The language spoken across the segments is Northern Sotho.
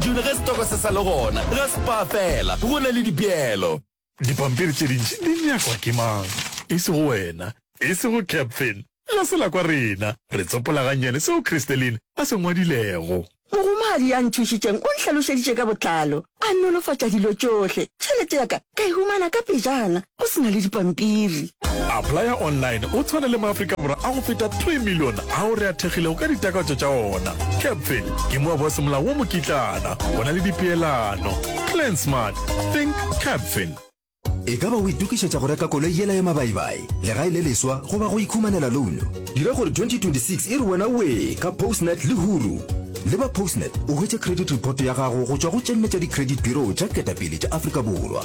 June ge setoko se sa le gona, ga se paa fela, go na le dipeelo. Dipampiri tše dintši di nyakwa ke mang? E sego wena, e sego Capfin. Ga se la kwa rena. Re tsopola gannyane seo Christeline a se ngwadilego. Mogomagadi ya nthušitšeng o nhlalošeditše ka botlalo, a nolofatša dilo tšohle. Tšhelete ya ka ka e humana ka pejana. o se na le dipampiri. Applya Online o tshwana le maAfrika Borwa a go feta 3 million ao re athegilego ka ditakatso tša ona. Capfin ke moabo wa semolao wo mokitlana go na le dipeelano. Plan smart, think Capfin. E ka ba o itokišetša go reka koloi yela ya mabaibai, legae le leswa goba go ikhumanela louno? Dira gore 2026 e re wena wee ka Postnet le Huru! Le ba Postnet o hwetše credit report ya gago go tšwa go tše nne tša di-credit bureau tša ketapele tša Afrika Borwa.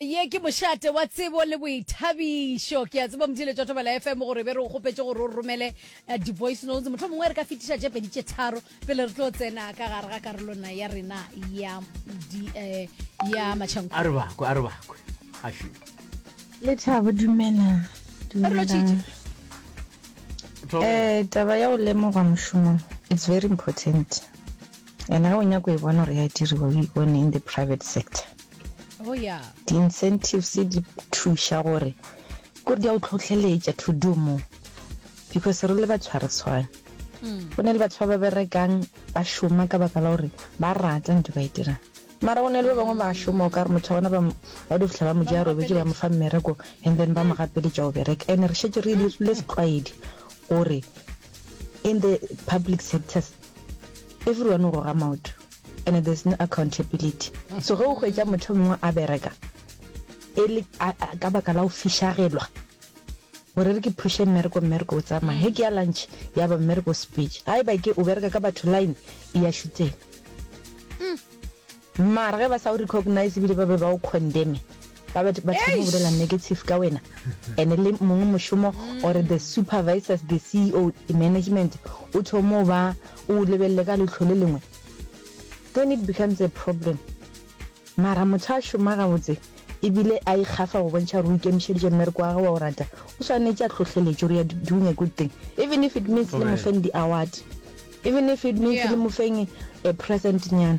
Ye ke mošate wa tsebo le boithabišo. Ke a tseba Mdile Totobela FM gore be re o kgopetše gore o romele eh, di-voice notes. Motlho mongwe re ka fetiša tše pedi tše tharo pele re tlo tsena ka gare ga karolona ya rena ya, di, eh, ya matšhanko. a re bakwe a re bakwe a šwi Lethabo dumela. Re lo tšitše. Dumelang. Thobo. Eh taba ya go lemogwa mošomong it's very important. And ga o nyako e bona gore ya diriwa o e bone in the private sector. Oh yeah. Di incentives di thuša gore kore di a o tlhohleletša to do more because re le batho ga re tshwane. Go ne le batho ba ba berekang ba šoma ka baka la gore ba rata ntho ba e dirang mara go ne le ba bangwe ba šoma o ka re motho wa bona ba do fitlha ba mo ja robetse ba mo fa mmereko and then ba mo gapeletša o bereka and re šetse re dirile setlwaedi gore in the public sectors everyone o goga maoto and there's no accountability. So ge o hwetša motho mongwe a bereka e le ka baka la go fišagelwa gore re ke phuše mmereko mmereko o tsamaya ge ke ya lunch ya ba mmereko o sepetše ga e ba ke o bereka ka batho line e ya šutseng mara ge ba sa o recognize ebile ba be ba o condemne ba ba ba thoma go bolela negative ka wena ene le mongwe mošomo or the supervisors the ceo the management o thomo ba o lebelele ka letlho le lengwe then it becomes a problem mara motho a šoma gabotse ebile a ikgafa go bontšha gore o ikemišeditše mmereko wa gage wa o rata o swanetše a tlhohleletše gore ya doing a good thing even if it means le mofeng di-award even if it means le mofeng a present nyana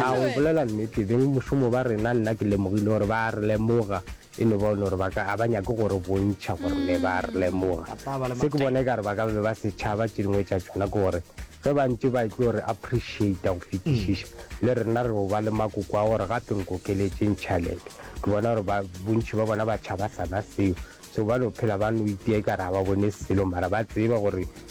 A o bolela nnete, beng mošomo ba rena, nna ke lemogile gore ba a re lemoga, e no ba o no re ba ka, a ba nyake go re bontšha gore ne ba a re lemoga. Se ke bona ekare ba ka be ba se tšhaba, tše dingwe tša tšona ke gore ge ba ntše ba etlo re appreciata go fetišiša, le rena re yo ba le makoko a gore gape nkokeletšeng tšhalete. Ke bona gore ba, bontši ba bona ba tšhaba sana seo, so ba no phela ba no itia ekare ga ba bone selo, mara ba tseba gore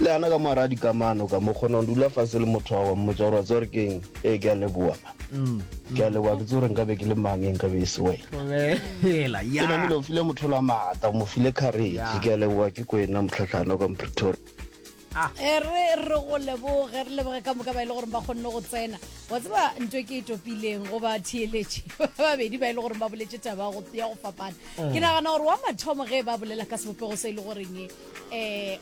Le ana ka mo gare ga dikamano ka mo, kgona go dula fase le motho wa go mmotsa gore wa tseba gore keng, ee, ke a leboga mma. Ke a leboga, ke tsebe gore nkabe ke le mang ge nkabe e se wena. Ke namile go file motho ola maatla, o mo file kharetšhe. Ke a leboga, ke kwena Mohlahlana o ka mo Pretoria. E re re go leboge, re leboge ka moka ba e le goreng ba kgonne go tsena. Wa tseba ntho e ke e topileng go ba theeletše ba babedi ba e le goreng ba boletše taba ya go fapana, ke nagana gore wa mathomo ge e ba bolela ka sebopego se e le goreng um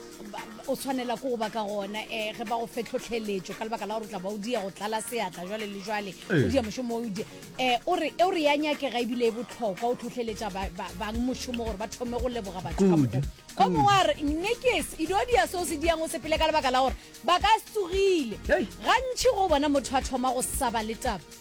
o tshwanela ko go ba ka gona um ge ba go fe tlhotlheletšo ka lebaka la gore o tla ba o dia go tlala seatla jale le jale o dia mošomo o dia um o re e o re ya nyakega ebile e botlhokwa o tlhotlheletša bang mošomo gore ba thome go leboga batho ka mokgo o mongwe a re nekes e dio dia seo se diang o sepele ka lebaka la gore ba ka tsogile gantšhi go bona motho a thoma go saba le taba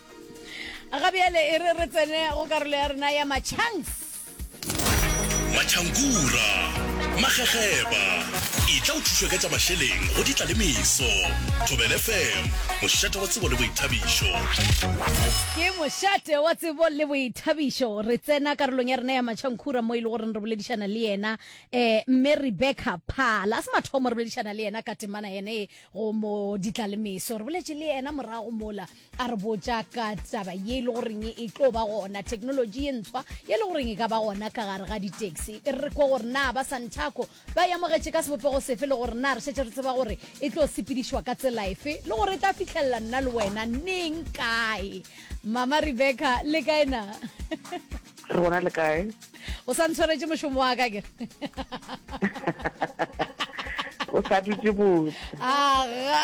ga bjale e re re tsene go karolo ya rena ya machanks matšhankura magegeba e tla o thušwa ka tša mašeleng go ditla le meso thobel fm mošate wa tsebo le boithabišo ke mošate wa tsebo le boithabišo re tsena karolong ya rena ya matšhankhura mo e le goreng re boledišana le yena um mme rebecca phala a se mathomo re boledišana le yena ka temana yene go mo ditla le meso re boletše le yena morago mola a re botša ka taba ye e le goreng e tlo ba gona technology ye ntshwa ye e le goreng e ka ba gona ka gare ga ditaxi e re kwe gore na ba santaco ba yamogetše ka sebopego sefe le gore na re šetše re tseba gore e tlo sepedišwa ka tsela efe le gore e tla fitlhelela nna le wena neng kae mama rebecca le kae na re gona le kae o sa ntshwaretše mošomo wa ka kere o sa dutse botse aga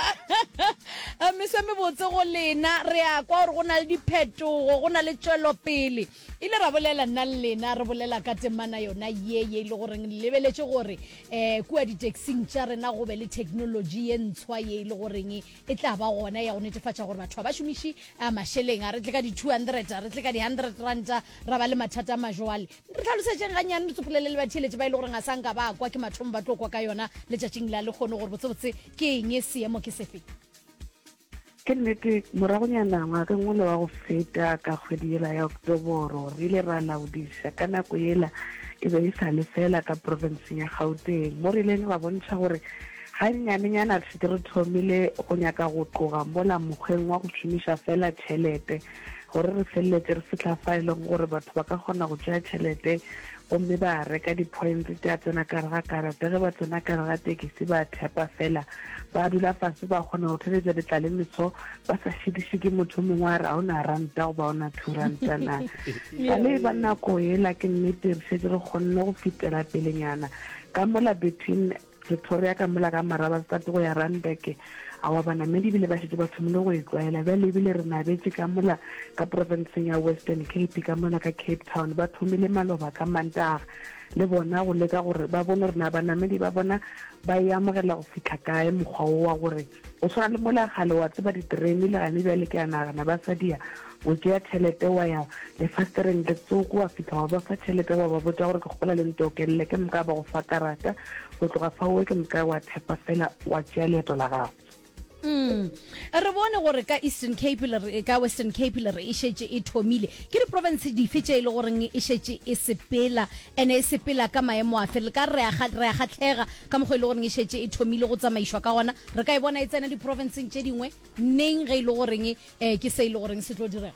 eh, mese mebotse go lena re ya kwa gore go na le diphetogo go na le tswelopele ile ra bolela nna le lena re bolela ka temana yona ye ye e le goreng lebeletše gore um kua ditaxing tša rena go be le technology ye ntshwa ye e le goreng e tla ba gona ya go netefatša gore batho ga ba šomiše a mašeleng a re tle ka di-200 a re tle ka di-100 ranta ra ba le mathata a majoale re tlhalosetšeng gannyane re tsopolele le batheeletši ba e le goreng ga sa nka ba kwa ke mathomo ba tlo kwa ka yona letšatšing la le kgone gore botsebotse ke eng seemo ke sefe Ke nnete, moragonyana ngwageng ole wa go feta ka kgwedi yela ya Oktoboro re ile ra laodiša ka nako yela e be e sa le feela ka profenseng ya Gauteng mo re ileng ra bontšha gore Gannyanenyana re šetše re thomile go nyaka go tloga mola mokgweng wa go šomiša feela tšhelete gore re feleletše re fihla fa e lego gore batho ba ka kgona go tšea tšhelete gomme ba reka dipoints tša tsena ka gare ga karata ge ba tsena ka gare ga tekisi ba thepa feela ba dula fase ba kgona go theletša letlalemeso ba sa šitiše ke motho o mongwe a re ga o na ranta goba o na two ranta na ka le ba nako ela ke nnete re šetše re kgonne go fetela pelenyana ka mola between Pretoria ka mola ka Marabastad go ya Randburg. Aowa, banamedi e bile ba šetše ba thomile go e tlwaela. Bjale e bile re nabetše ka mola ka profenseng ya Western Cape, ka mona ka Cape Town. Ba thomile maloba ka Mantaga, le bona, go leka gore ba bone gore na banamedi ba bona ba e amogela go fihla kae mokgwa wo wa gore, Go swana le mola kgale wa tseba diterene le gane bjale ke a nagana ba sa dia o tšea tšhelete wa ya lefastereng le tsoko wa fihla wa ba fa tšhelete wa ba botša gore ke kgopola le ntokelele ke moka ba go fa karata go tloga fa owe ke moka wa thepa fela wa tšea leeto la gago. Mm. Re bone gore ka Eastern Cape le re ka Western Cape le re e šetše e thomile. Ke di province dife tše e le goreng e šetše e sepela ene e sepela ka maemo afe? Le ka re a ga re a gatlhega Ka mokgwa e le goreng e šetše e thomile go tsamaišwa ka gona, re ka e bona e tsena diprofenseng tše dingwe neng ge e le goreng ke se e le goreng se tlo direga.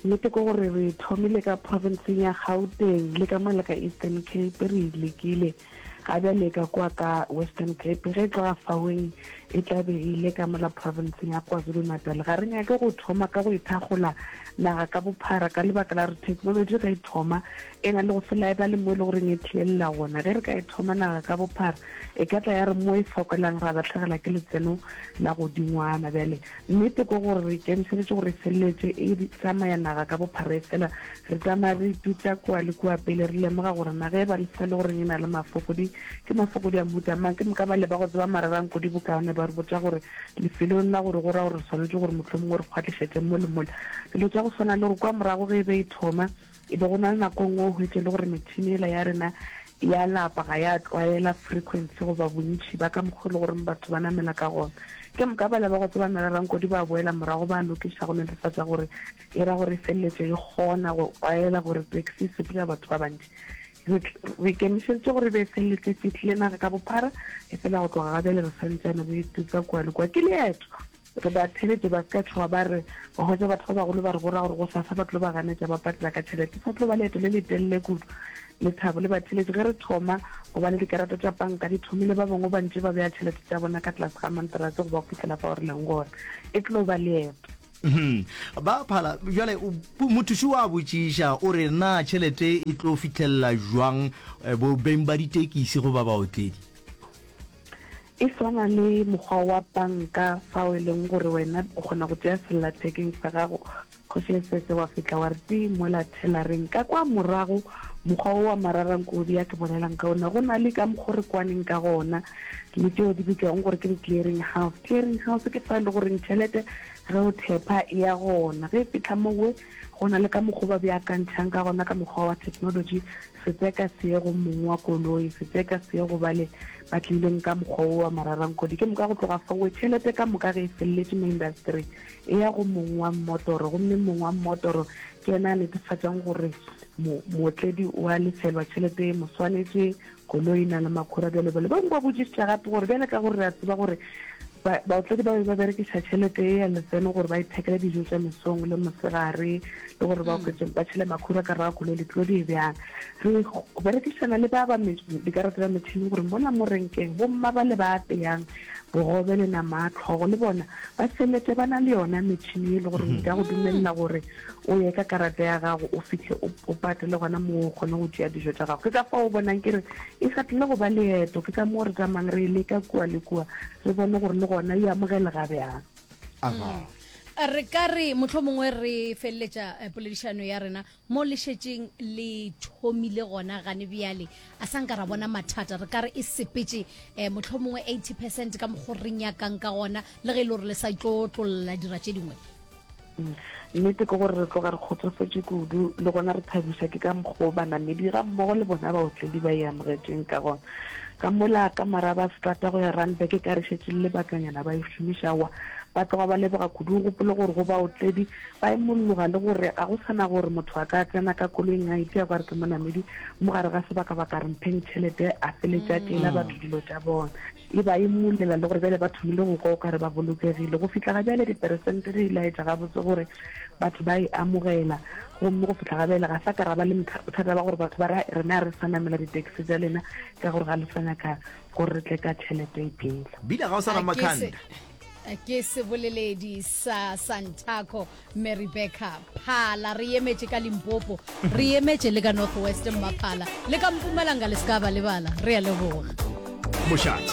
Nnete ke gore re e thomile ka profenseng ya Gauteng le ka mole ka Eastern Cape, re e lekile ga bjale ka kwa ka Western Cape, ge e tloga faoeng e tla be e ile ka mola profenseng ya KwaZulu-Natal. Ga re nyake go thoma ka go e thakgola naga ka bophara ka lebaka la gore theknolotši ge e thoma E na le go se laebale mo e le goreng e thielela gona. Ge re ka e thoma naga ka bophara, e ka tla ya re mo e fokelang ra lahlegelwa ke letseno la godingwana. Bjale, nnete ke gore re ikemišeditše gore e feleletše e tsamaya naga ka bophara. Efela re tsamaya re itutša kua le kua pele re lemoga gore naga e baleswa le goreng e na le mafokodi. Ke mafokodi a mohuta mang? Ke moka bale ba go tseba marerang kudu bokaone ba re botša gore lefelong la gore go ra gore re swanetše gore mohlomongwe re kgwatlišetše mo le mole, dilo tša go swana le gore kua morago ge e be e thoma, E be go na le nako nngwe o hwetše le gore metšhini ela ya rena ya lapa ga ya tlwaela frequency goba bontši ba ka mokgwa le goreng batho ba namela ka gona. Ke moka bale ba go tseba nna le Rankodi ba boela morago ba lokiša go netefatša gore e ra gore e feleletše e kgona go tlwaela gore taxi e sepela batho ba bantši. Re re ikemišeditše gore e be e feleletše e fihlile naga ka bophara, efela go tloga ga bjale re sa ntšane re e tuka kua le kua. Ke leeto! Re ba theletše ba se ka tšhoga ba re, Wa hwetša batho ba bagolo ba re bora gore gosasa ba tlo ba ganetša ba patela ka tšhelete. Sa tlo ba leeto le letelele kudu. Lethabo le ba theletše ge re thoma go ba le dikarata tša panka di thomile ba bangwe ba ntše ba bea tšhelete tša bona ka tlase ga manterase go ba fihlela fao re leng gona. E tlo ba leeto. Ba phala. Bjale mothuši o a botšiša, o re, Na tšhelete e tlo fihlelela bjang bo beng ba ditekisi goba baotledi? E swana le mokgwa wa banka fao e leng gore wena o kgona go tšea sellathekeng sa gago, Kgoši Esese, wa fihla wa re tii mola thelareng. Ka kwa morago, mokgwa wo wa mararankodi ya ke bolelang ka wona, go na le ka mokgo re kwaneng ka gona le tšeo di bitšwago gore ke di-clearing house. Clearing house ke fa e le goreng tšhelete ge o thepha e ya gona, ge e fihla mo we, Go na le ka mokgo ba beakantšhang ka gona ka mokgwa wa theknolotši, setseka see go mong wa koloi, setseka see go bale ba tleileng ka mokgwa wo wa mararankodi. Ke moka go tloga fawe, tšhelete ka moka ge e feleletše mo indasetering, e ya go mong wa mmotoro, gomme mong wa mmotoro ke yena a netefatšang gore mo, mootledi o a lefelwa tšhelete e mo swanetšeng, Koloi e na le makhura bjale bale bangwe ba botšišitša gape gore bjale ka gore re a tseba gore baotledi ba be ba berekiša tšhelete e ya letseno gore ba ithekele dijo tša mesong le mosegare le gore ba oketse ba tšhele makhura ka raga koloi ditulo di e bjang re berekišana le ba ba dikarata tsa metšhini gore mola mo renkeng bomma ba le ba apeyang bogobe le nama a tlhogo le bona ba felete ba na le yona metšhini e le gore nka go dumelela gore o ye ka karata ya gago o fihle o, o pate le gona moo o kgone go tšea dijo tša gago. Ke ka fao o bonang ke re e sa tlile go ba leeto, ke ka moo re tsamayang re e leka kua le kua re bone gore le gona e amogelega bjang. Aha. Re ka re mohlomongwe re feleletša eh, poledišano ya rena mo le šetšeng le thomile gona gane bjale. A sa nka ra bona mathata, re ka re e sepetše eh, mohlomongwe 80 percent ka mokgo re nyakang ka gona, le ge e le gore le sa tlo tlolla dira tše dingwe. Nnete ke gore re tloga re kgotsofetše kudu le gona re thabišwa ke ka mokgwa o banamedi ga mmogo le bona baotledi ba e amogetšeng ka gona. Ka mola ka maraba setrata go ya Randburg e ka re šetše le lebakanyana ba e šomiša wa ba tloga ba leboga kudu. O gopole gore go baotledi ba imolloga le gore ga go sa na gore motho a ka tsena ka koloing a ipša kwa re ke monamedi mo gare ga sebaka-baka re mpheng tšhelete a feletše a tšeela batho dilo tša bona. E ba imollela le gore bjale ba thomile go kwa o ka re ba bolokegile. Go fihla ga bjale, diperesente di laetša gabotse gore batho ba e amogela. Gomme go fihla ga bjale ga sa ka ra ba le bothata ba gore batho ba re, Rena ga re sa namela ditaxi tša lena ka gore ga le sa nyaka gore re tle ka tšhelete e pila. Bina ga o sa na makhanda. A ke seboleledi sa Santaco. mme rebecca phala re emetše ka limpopo re emetše le ka north west mmaphala le ka mpumalanga le se ka ba lebala re a leboga mošate